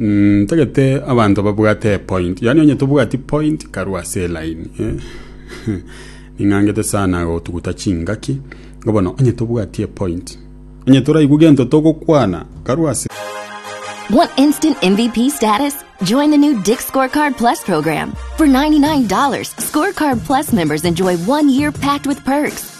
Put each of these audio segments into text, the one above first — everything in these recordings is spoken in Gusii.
Ntagete abanto babwate epoint, yaani onye tobwati point karue ase eline eh. Ning'angete sana gotuguta chingaki, igo bono onye tobwati epoint, onye toraigwe gento togokwana karue ase Want instant MVP status? Join the new Dick Scorecard Plus program. For $99, Scorecard Plus members enjoy one year packed with perks,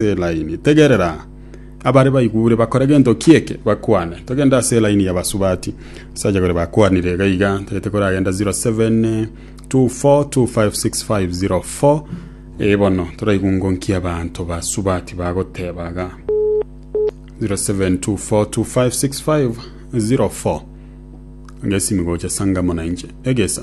Ase elaini. Tegerera! Abare baigure bakore gento ki eke? Bakwane. Togende ase elaini y'abasubati. Abasacha baria bakwanire iga iga, tagete koragenda 0724256504. Ee bono, toraigungo nki abanto basubati bagoteba iga. 0724256504. Onge esimi gocha Sangamo na inche. Egesa.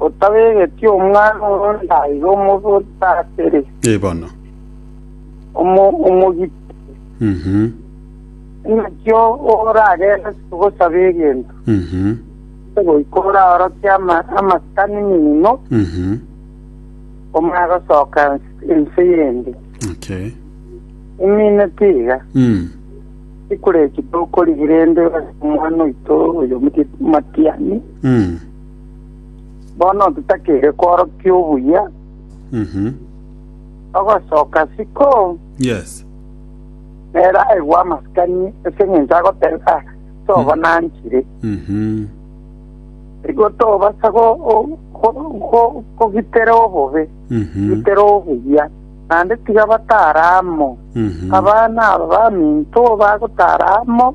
Otabegeti omwana oronde aiga omogotateri, Eh, bono. omo- omogiteri, Mhm. inakio oragende gosaba egento, Mhm. goika oraoroke ama- amasikani mino, Mhm. omanye gosoka ense- ense yende. Okay. Imineti iga, Mm. ikureki tokorigia rende omwana oito oyo omogeti matiani, Mm. Bono totakeire kworokia obuya, Mhm. togosoka isiko, Yes. nere aigwe amasikani ase eng'encho agoteba, "Ah, toba nanchire. Mhm. Igo tobasa go- go- go- go- kogitera obobe, Mhm. gitera obuya, naende tiga batara amo. Mhm. Abana aba baminto bagotara amo,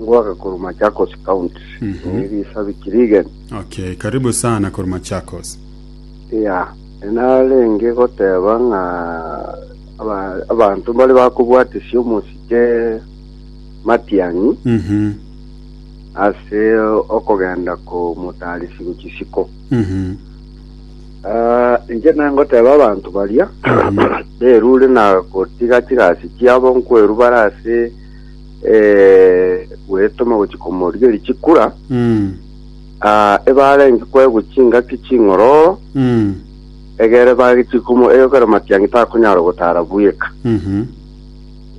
Ngoake korwa Machakos County. Mhm. Eri isabiki rigeni. Okay, karibu sana korwa Machakos. Ya, narenge goteba ng'a aba- abanto mbare bakobwatisia omosike matiang'i Mhm. ase okogenda komotarisi gochisiko. Mhm. Ah, inche nangoteba abanto baria Mhm. berure na gotiga chigasi chiabo nkwerubare ase eh, gwetoma gochia komoria richikura Mm. ah, ebarenge kwegwa chingaki ching'ororo Mm. egere bagichia komo eyokera matiangi takonyara gotara bweka Mhm.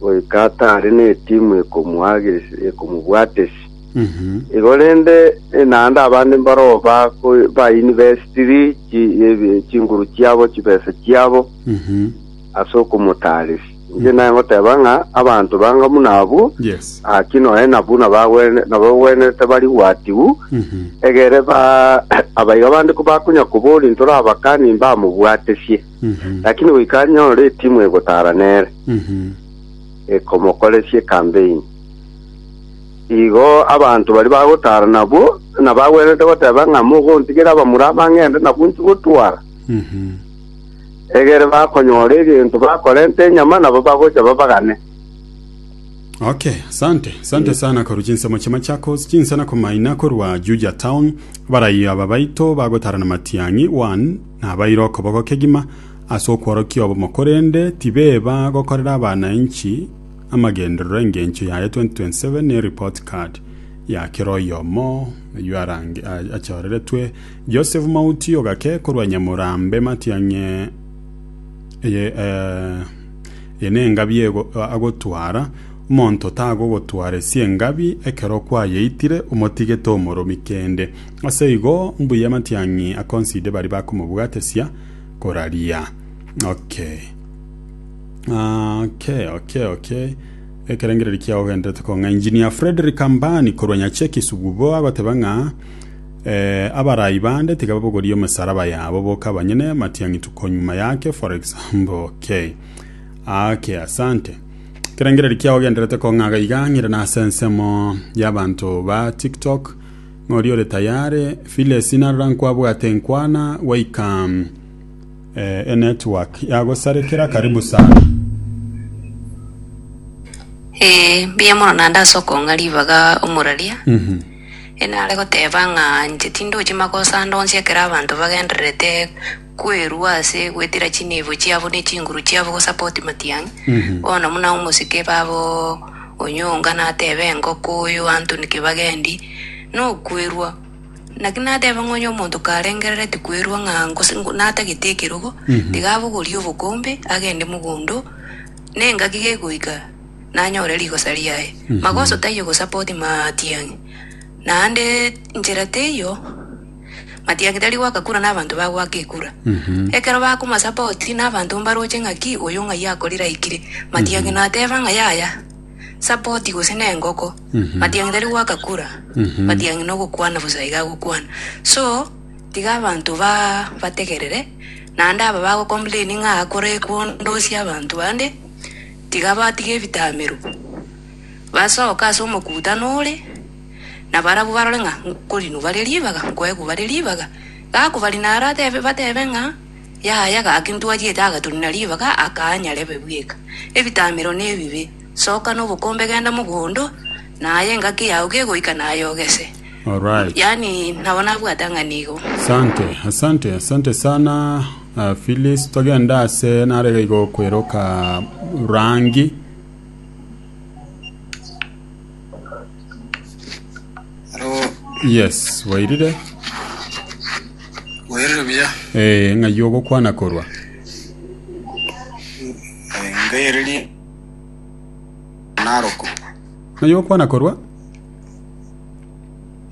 goika atare na etimu ekomuagesi- ekomobwatesi Mhm. igo rende eh, naende abande mbaroo bako- bainivestiri chi- ebi- chinguru chiabo chibesa chiabo Mhm. ase okomotaresi Inche naye ngoteba ng'a abanto banga buna abwo, Yes. gaki noe na buna bagwene- nabagwenerete bari gwatigwu, Mhm. egere ba abaiga bande kobakonya koboria ntorabakani mbamobwatesie. Mhm. Lakini goika anyore etimu egotara nere, Mhm. ekomokoresie campaign. Igo abanto bari bagotara nabwo, nabagwenerete goteba ng'a mogontigera abamura abang'ende nabwo nchigotwara. Mhm. Egere bakonyora egento bakorente enyama nabo bagocha babagane. Okay, sante, sante sana korwa chinsemo chia Machakos, chinsana komaina korwa Juja Town, abaraiyo aba baito bagotarana matiang'i, one, nabaire okoboko kegima ase okworokia obomo korende tibeba gokorera abanainchi amagenderero engencho yaye 2027 ne report card ya kera oyomo oyio arange a- achoreretwe Joseph Mauti ogake korwa Nyamorambe Matiang'i eye eye nengabi ego agotwara, omonto tagogotwara esie engabi ekero kwayeitire omotigete omoromi kende. Ase igo mbuya Matiang'i akonside baria bakomobwatesia koraria. Okay. Okay, okay, okay. Ekerengererio kiago genderete kong'a. Engineer Fredrick Ambani korwa Nyacheki Sugubo agoteba ng'a Abarai bande tiga babogorie emesaraba yabo boka abanyene amatiang'itwe konyuma yake for example okay okay asante ekerengereri kiao genderete kong'aga iga ng'ire nase ensemo y'abanto ba tiktok ng'ori ore tayare vile sina rora nkwabwate nkwana gwaika eh, enetwork yagosarekera karibu sana Ee, mbuya mono naende ase okong'a ribaga omoraria. Enare goteba ng'a inche tindochia magoso ande onsi ekero abanto bagendererete kwerua ase gwetira chineebo chiabo ne chinguru chiabo gosupport matiang'i. Bono buna omosike babo onyonga natebe engoko oyo Anthony Kibagendi nokwerua. Naki nateba ng'a onye omonto karengerereti kwerua ng'a gose natagete ekerogo, tiga abogorie obokombe agende mogondo, nengaki gegoika. nanyore rigosa riaye. Magoso taiyo gosapa oti matiang'i, naende nchera teiyo matiang'i tari goaka kura n'abanto bagoaka ekura. Ekero bakomasapa oti n'abanto mbaroche ng'aki oyo ng'ai akorire aikire, matiang'i nateba ng'a yaya, sapa oti gose nengoko. Matiang'i tari goaka kura, matiang'i nogokwana bosa iga agokwana. So tiga abanto ba bategerere, naende aba bagocomplaini ng'a akora ekwondosia abanto bande, Tiga batige ebitamero, basoke ase omokutano ore, na barabwo barore ng'a nkorinwa bare ribaga, nkoegwa bare ribaga. Gakobarina aro atebe, batebe ng'a, Yaya, gaki ntwariete agatorina ribaga aka nyarebe bweka. Ebitamero nebibe. Soka nobokombe genda mogondo, na aye engaki yao gegoika naye ogese. Alright. yaani nabo nabwate ng'a nigo Asante, asante, asante sana uh, Phyllis. Togenda ase narega igo kweroka rangi. Aro Yes, wairire. werire buya Eh, ng'ai ogokwana korwa. ngairerie naroko Ng'ai ogokwana korwa?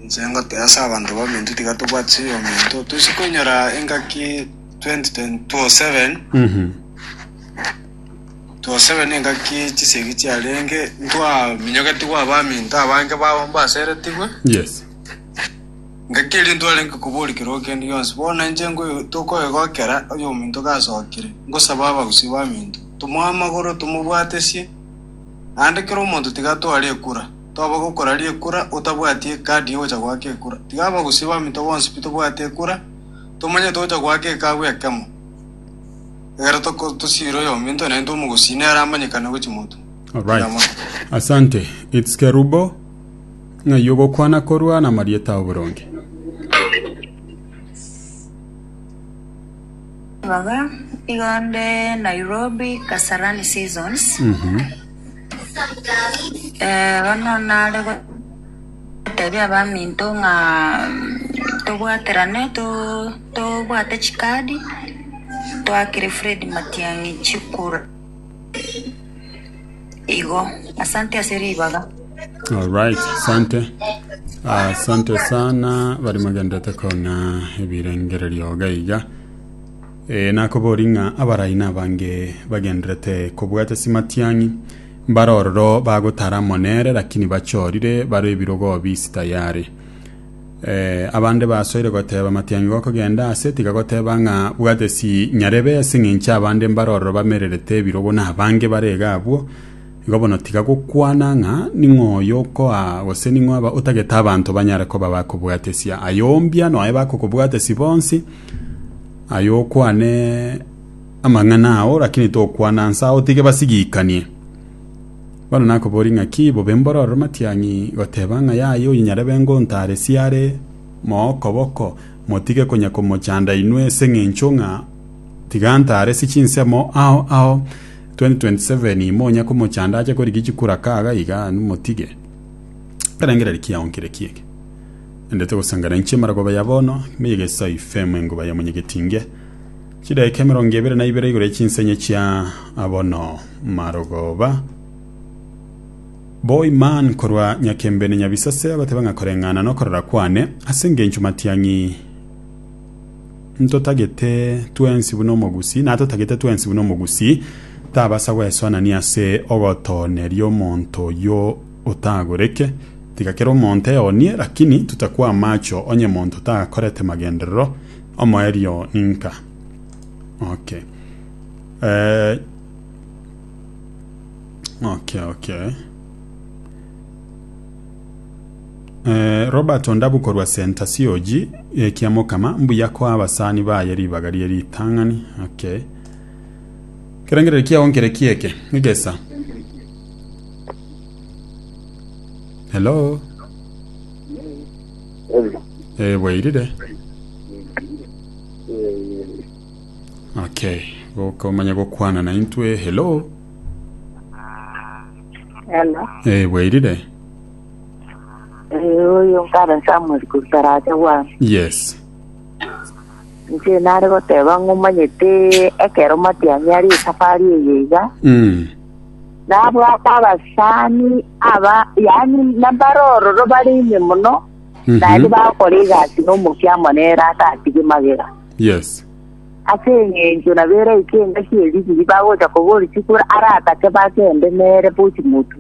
Inche ngoteba ase abanto baminto tiga tobwate chiyominto tosie koinyora engaki 2027 Mhm. 27 engaki chisegi chiarenge ntwaminyogetigwe abaminto abange babo mbaseretigwe Yes. ngaki eria ntwarenge koboria keroo kende gionsi bono inche nkoyo- tokoegokera oyominto gasokire ngosaba abagusii baminto tomoe amagoro tomobwatesie naende kera omonto tiga atware ekura Toba gokora ri'ekura otabwati ekadi y'ogocha goaka ekura. Tiga abagusia baminto bonsi pi tobwate ekura, tomanye togocha goaka ekabu ekemo. Ekero toko- tosiire oyominto naintwe omogusia nere amanyekane gochia moto. Alright. Eramoro. Asante. It's Kerubo. Ng'ai ogokwana korwa na marieta ao boronge. Ibaga igo nde Nairobi Kasarani Seasons. Mhm. Bono nare gotebia abaminto ng'a tobwaterane, to- tobwate chikadi toakere Fred Matiang'i chikura. Igo, asante ase ribaga. Alright, asante. Asante sana bari magenderete koona ebirengererio iga iga. Ee, nakoborie ng'a abarai nabange bagendererete kobwate chimatiang'i, mbare ororo bagotara amo nere, lakini bachorire, bare ebirogo obi isi tayare. Ee, abande basoire goteba, Matiang'i gokogenda aase, tiga goteba ng'a bwate chinyarebe, as'eng'encho abande mbare ororo bamererete ebirogo nabange bare iga abwo, Igo bono tiga gokwana ng'a ning'o oyokoa gose ning'o aba otagete abanto banyare koba bakobwatesia. Aye ombia noe bakokobwatesia bonsi, aye okwane amang'ana ao, lakini tokwana nse ao, otige basigikanie. Bono nakoboria ng'a ki bobe mboro ororo matiang'i goteba ng'a yaye oyo nyarebe ngontaaresie are mookoboko, motige konya komochanda inwe ase eng'encho ng'a Tiga ntaare si chinsemo ao ao 2027 monya komochanda ache korigia chikura kaga iga nimotige ekerengererio kiao nkere kiege ende togosangana inche mara koba ya bono me yegeso ifemo enguba ya monyegetinge chidaeka emerongo ebere na ibere igoro ya chinsenye chia abono marogoba Boy man korwa nyakembene nyabisase abateba ng'a koreng'ana nokorora kwane ase engencho matiang'i Ntotagete twensi buna omogusii, na atotagete twensi buna omogusii tabasa gwesoanania ase ogotooneria omonto oyio otagoreke. Tiga kera omonto eonie, lakini totakwa amacho onye monto takorete magenderero, omoerio ninka? Okay. Eh, okay, okay. Eh, Robert Ondabu korwa Senta COG eh, kia Mokama, mbuya koa abasani baye ribaga rie ritang'ani. Okay. Kerengereri kiao nkere kieke, egesa. Hello. Eh, bwairire. Okay. Gokomanya gokwana na intwe. Hello. Hello. Eh, bwairire? Eh, oyo nkare Samuel Kurutaracha bwana. Yes. Nche nare goteba ng'omanyete ekero matiani ari esafari eye iga. Mm. Nabwate abasani aba yani nabarororo bari ime muno. Mhm. Naende bakora egasi nomokia amo nere atatige magega. Yes. Ase engencho naberaike engaki ye Misiri bagocha kobori chikura aratake bagende nere bo ching'utu.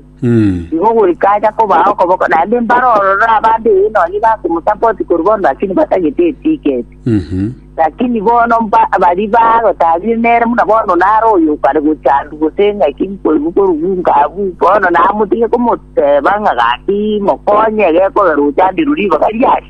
Igo goika acha kobaa okoboko, naende mbare ororo abande ee nonye bakomosaba oti korwa bono lakini batagete etiketi. Lakini bono mba- baria bagotaarire nere buna bono nare oyo okare gochandwa gose engaki nkoigwa korugunka abwo, bono namotige komoteba ng'a gaki mokonye egekogera ochandirwe ribaga riaye.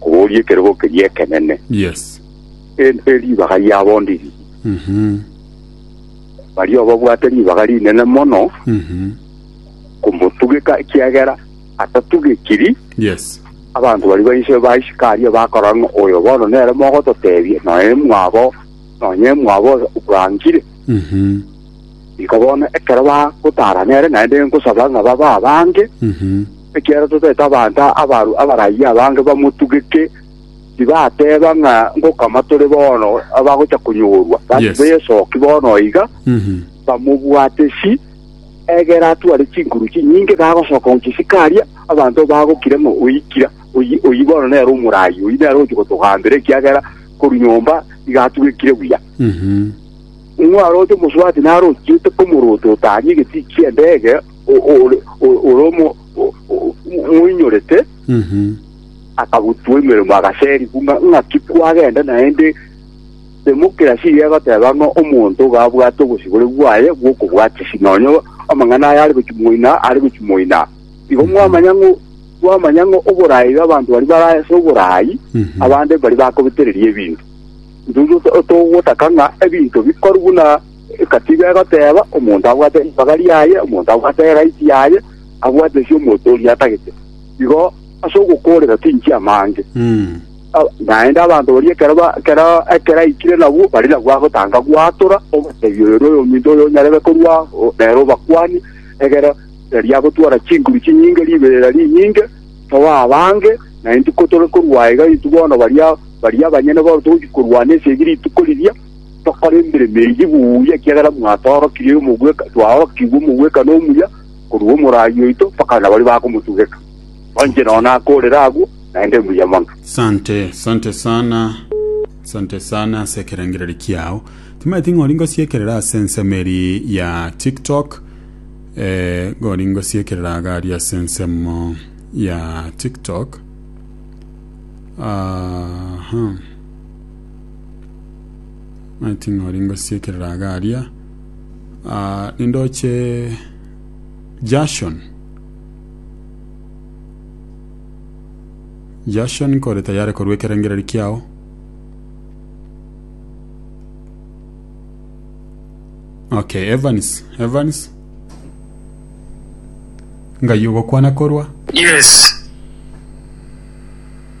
kororia ekerogo keria ekenene. Yes. Eri neribaga riabondi riria. Mhm. Baria obabwate ribaga rinene mono Mhm. komotugeka ekiagera atatugekiri Yes. abanto bari bainse baisika aria bakorora ng'a oyo bono nere mogototebia nonya mwabo nonya emwabo bwangire Mhm. iko bono ekero bagotara nere naende nkosaba ng'a baba abange Mhm. Ekiagera totaete abanto abaru abarayia abange bamotugeke, tibateba ng'a ngokama tore bono abagocha konyorwa, gaki besoki bono iga, bamobwatesi. Egera atware chinkuru chinyinge, nagosoka gochia Sikaria, abanto bagokira ng'a oikire. Oyio bono nere omorayia, oyio nere ogochia gotogambera, ekiagera korwa nyomba iga atugekire buya. Ng'o aroche omosubati naro ochiete komorota otanyie egetiki ki'endege? ore omoinyorete akagotua emeremo agaseri, buna ng'aki kwagenda naende demokerasi eye egoteba ng'a omonto iga abwate obosibore bwaye bw'okobwatisi, nonya amang'ana aye are gochia moina, are gochia moina. Igo mwamanya ng'a mwamanya ng'a oboraai bw'abanto baria bare ase oboraai, abande mbaria bakobetereria ebinto. Intwe togotaka ng'a ebinto bikorwe buna Egatiga egoteba, Omonto abwate ribaga riaye, omonto abwate egati yaye, abwate ase omonto oria atagete. Igo ase ogokoorera tinchia amange. A- Naende abanto baria ekero ba- ekero ekero aikire nabwo, bare nabwo agotanga gwatora, obatebia, Oyo noyo ominto oyo onyarebe korua o- nere obakuani, egere riria agotwara chinguru chinyinge, riberera rinyinge, toba abange, na intwe ko tore korwa iga, intwe bono baria baria abanyene bono togochia korwana esegi rituko riria, Tokore emeremo eyio buya, ekiagera mwatoorokirie omogweka, twaorokigwe omogwekano omuya korwa omoraai oito, mpaka nabaria bakomotugeka. Onche nonya nakorere agwo, naende mbuya mono. Sante, sante sana, sante sana ase ekerengererio kiao. Timaeti ng'a ori ngosiekerera ase ensemo eri ya TikTok, eh, ng'a ori ngosiekerera iga aria ase ensemo ya TikTok. Aha. Muna ting'ori ngosiekerera iga aria Ah, nindoche Jason Jason kore tayari korwa ekerengereri kiao Okay, Evans Evans Ngai ogokwana korwa Yes.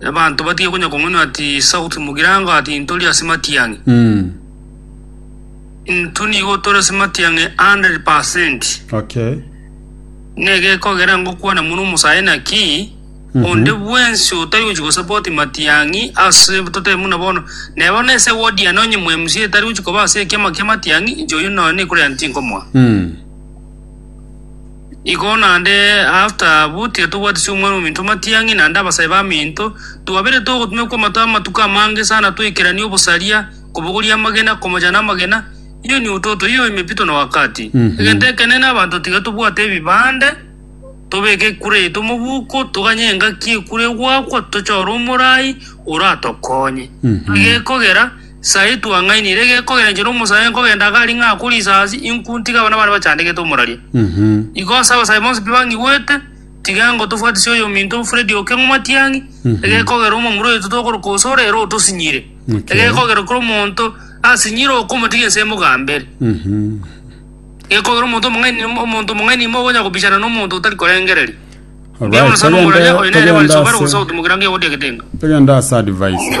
Abanto batige konya kong'unua ati sauti mogirango ati intori ase matiang'i. Mm. Intwe nigo tore ase matiang'i 100%. Okay. Negekogera ngokwana mono omosae naki onde bwensi otari gochi gosapoti matiang'i ase totebe muna bono nebo nese wodi ane onye mca etari gochi koba ase ekiama kia matiang'i inche oyo noyo nekorera ntinkomoa Mm. Igo naende after abwo tiga tobwati ase omwana ominto matiang'i naende abasae baminto, twabeire togotumekwa amato amatuko amange sana toikeranie obosaria, kobogoria amagena, komochana amagena, iyo niototo, iyo imepito na wakati. Egento ekenene abanto tiga tobwate ebibande, tobeke ekura yaito mobuko, toganye engaki ekura egoakwa, tochore omorai oratokonye. Iga ekogera. Sae twang'ainire gekogenchera omosae nkogenda iga aria ng'akwa risasi, inku ntige abana bane bachandegete omoraria. Igo ase abasae bonsi pi bang'igwete, tiga ngotofwatisia oyominto Freddy Okeng'o Matiang'i, egekogera omomura oito tokoroka Osoro ere otosinyire. Egekogera kera omonto asinyire okomotiga ense mogambe ere. Gekogera omonto omong'aini omonto omong'aini ime ogonya kobichana na omonto otari korengereria. Mbuya mono sana omoraria oyo nere barisobare gose ogotumokera ngegotia getenga. Togende ase advice.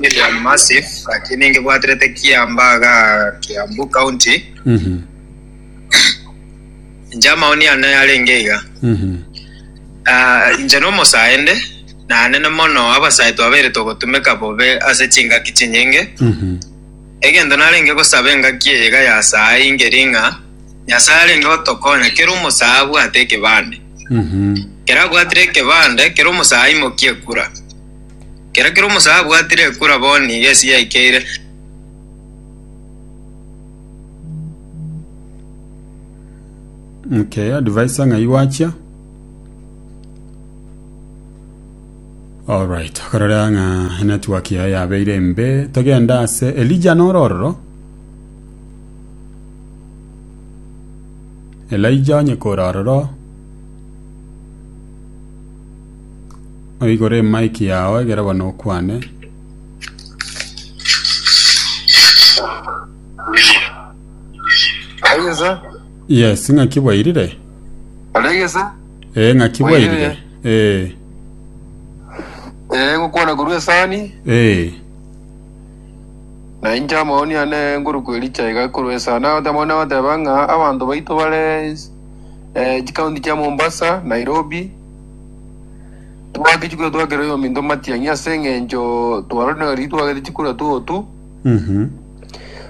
William Massive gaki ningebwaterete Kiambaga, Kiambu County. Mhm. Inche amaoni ane arenge iga. Mhm. Ah, inche nomosaende nanene mono abasae twabere togotumeka bobe ase chingaki chinyinge Mhm. egento narenge gosaba engaki eye iga yasae ingeri ng'a nyasae arenge gotokonya kera omosae abwate ekebande Mhm. kera abwatire ekebande kera omosae aimokie ekura Kera kera omosae abwatire ekura bo nigo esi yaikeire. Okay, advisor ng'ai gwachia alright korora ng'a network yaye yabeire mbe togenda ase elija norororo elija onye korororo Oigure emaiki yao egere bono okwane. Aigese, Yes, ng'aki bwairire? oregese, Eh, ng'aki bwairire? Eh, eh, ngokwana korwa esani, eh, na inche amaoni ane ngoruku ericha iga korwa esani, nagoteba amaoni nagoteba ng'a abanto baito bare eh, chikaunti chia Mombasa, Nairobi, Twagachia korua twakera oyominto matiang'i ase eng'encho tware na riria twagete chikura tuotu Mhm.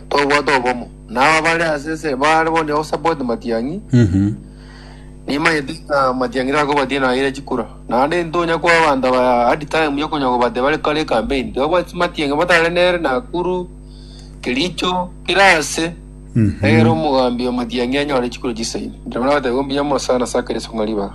twabwate obomo. Na aba bare ase ese bare bono nigo support matiang'i. Mhm. Nimanyete ng'a matiang'i takobatia nayeria chikura. Naende ntonya kwa abanto aba hard time ya konya kobatia bare kare campaign. Twabwate matiang'i batare nere Nakuru, Kericho, kera ase. Mhm. Egere omogambi o matiang'i anyore chikura chisaini. Nabana batebi mbuya mono sana ase akere ase kong'a ribaga.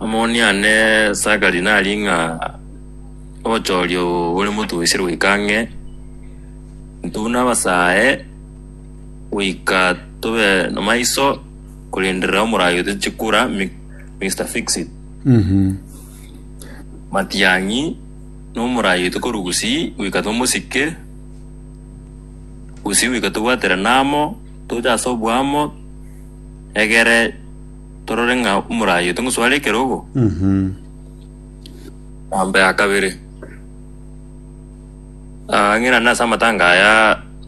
Omoni ane Sakari nari ng'a obochoria obo bore motugusie goika ang'e, intwe buna abasae goika tobe nomaiso korenderera omoraio tochikura Mi- Mister Fixit. Matiang'i nomoraio tokoru gusii goika tomosike gusii goika tobwaterane amo toche ase oboamo egere torore ng'a omorayete ngosware ekerogo. Eambo ya kabere, ah, ng'irane ase amatanga aya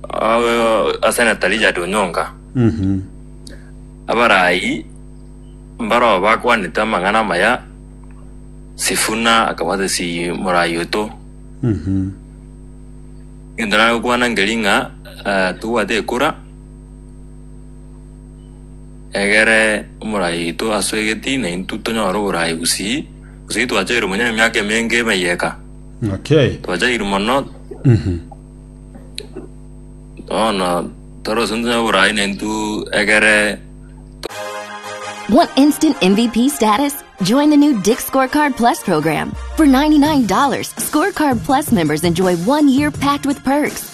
ah, Senator Richard Onyonga, abarayi mbarao bakwanete amang'ana amaya, Sifuna akabwata esi morayi oito. Egento nare gokwana nkeri ng'a ah, tobwate ekura Egere omorai oito asoe egetii, na intwe tonyore oborai gusii. Gusii twachaire monyene emiaka emenge emeyio eka. Okay. Twachaire mono, Mhm. bono tore gose ntonyore oborai na intwe egere Want instant MVP status? Join the new Dick Scorecard Plus program. For $99, Scorecard Plus members enjoy one year packed with perks,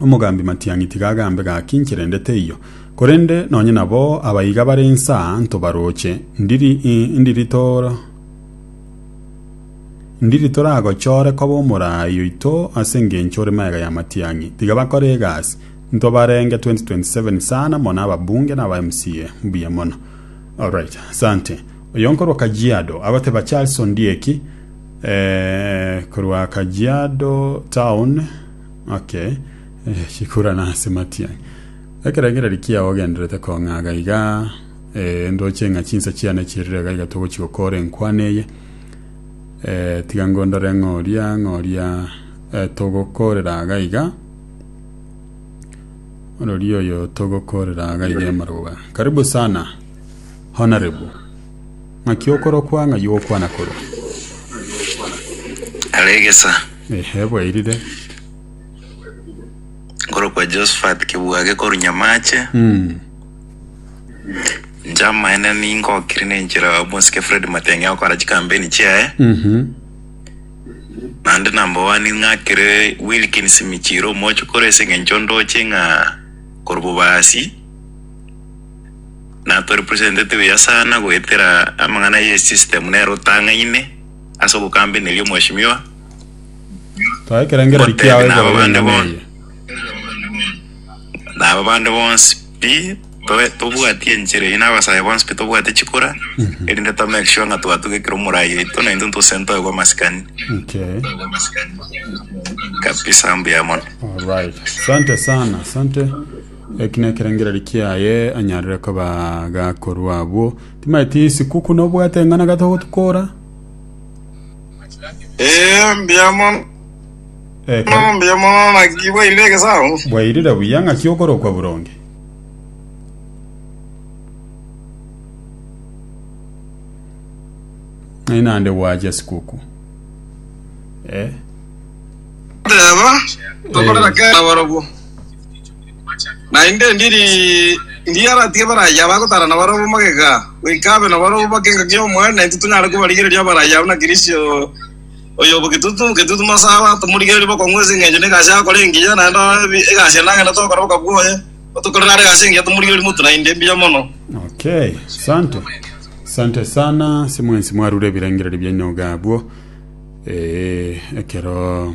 Omogambi matiang'i tiga agambe gaki ncherende teiyo. Korende nonye nabo abaiga bare insa ntobaroche, ndiri ndiri tor ndiri toragochore koba omoraai oito ase engencho ore magega ya matiang'i. Tiga bakore egasi. Ntobarenge 2027 sana mono ababunge na aba MCA. Mbuya mono. Alright. Asante. Oyo nkorwa Kajiado agoteba Charles Ondieki eh, korwa Kajiado town Okay, eh, chikura nase matia. Ekero egereri kiao ogenderete kong'aga iga, eh, ndoche ng'a chinsa chiane chirire iga iga togochi gokora enkwana eye. Eh, tiga ngondore ng'oria ng'oria eh, togokorera aga iga. Orori oyo togokorera aga iga emaroba. Karibu sana, honorable. Ng'aki okorokwa ng'ai ogokwana korwa? Are egesa Ehe, bwairire. nkorokwa Josephat Kebwage korwa Nyamache, Mm. inche amaene ningokire na enchera ya omosike Fred Matenge agokora chikampeni chiaye, Mhm. naende number one ng'akire Wilkins Michiro omochokoro ase eng'encho ndoche ng'a korwa Bobasi, na to representete buya sana goetera amang'ana ye system nero otang'aine ase ogokambeneria omweshimiwa Toa ekerengereri kiao Ngotebi nabo bande ekerengenyama bonsi eye. nabo bande bonsi pi to- tobwatie enchera eye na abasae bonsi pi tobwate chikura erinde to make sure ng'a twatuga ekero omorai oito na intwe ntose ntoegwe amasikani Okay. kabisa mbuya mono Alright. Asante sana. Asante. Eki nekerengererio kiaye anyarire koba gakorwa abwo. Timaeti sikuku nobwate eng'ana gata ogotukora? Ee, mbuya mono, Eke mbuya mono, naki bwairire egesaku. bwairire buya ng'aki okorokwa boronge. Ai nande gwachia sikuku. Eh. Teba, tokorera kera barobwo. Naende ndiri mbuya abatige abarayia bagotara nabarabwo magega, goika abe nabarabwo bake engaki y'Omoyo, naintwe tonyare kobarigereria abarayia buna Kristo oyo obo getutu getutu masaba, tomorigererie bokong'u ase engencho negasi agokora engiya, naende abe egasi ende agende togokora boka bwoye, otokorere are egasi engiya tomorigererie motu naende mbuya mono. Okay, sante sante sana ase mwensi mwarure ebirengererio biaino iga abwo. Ee, ekero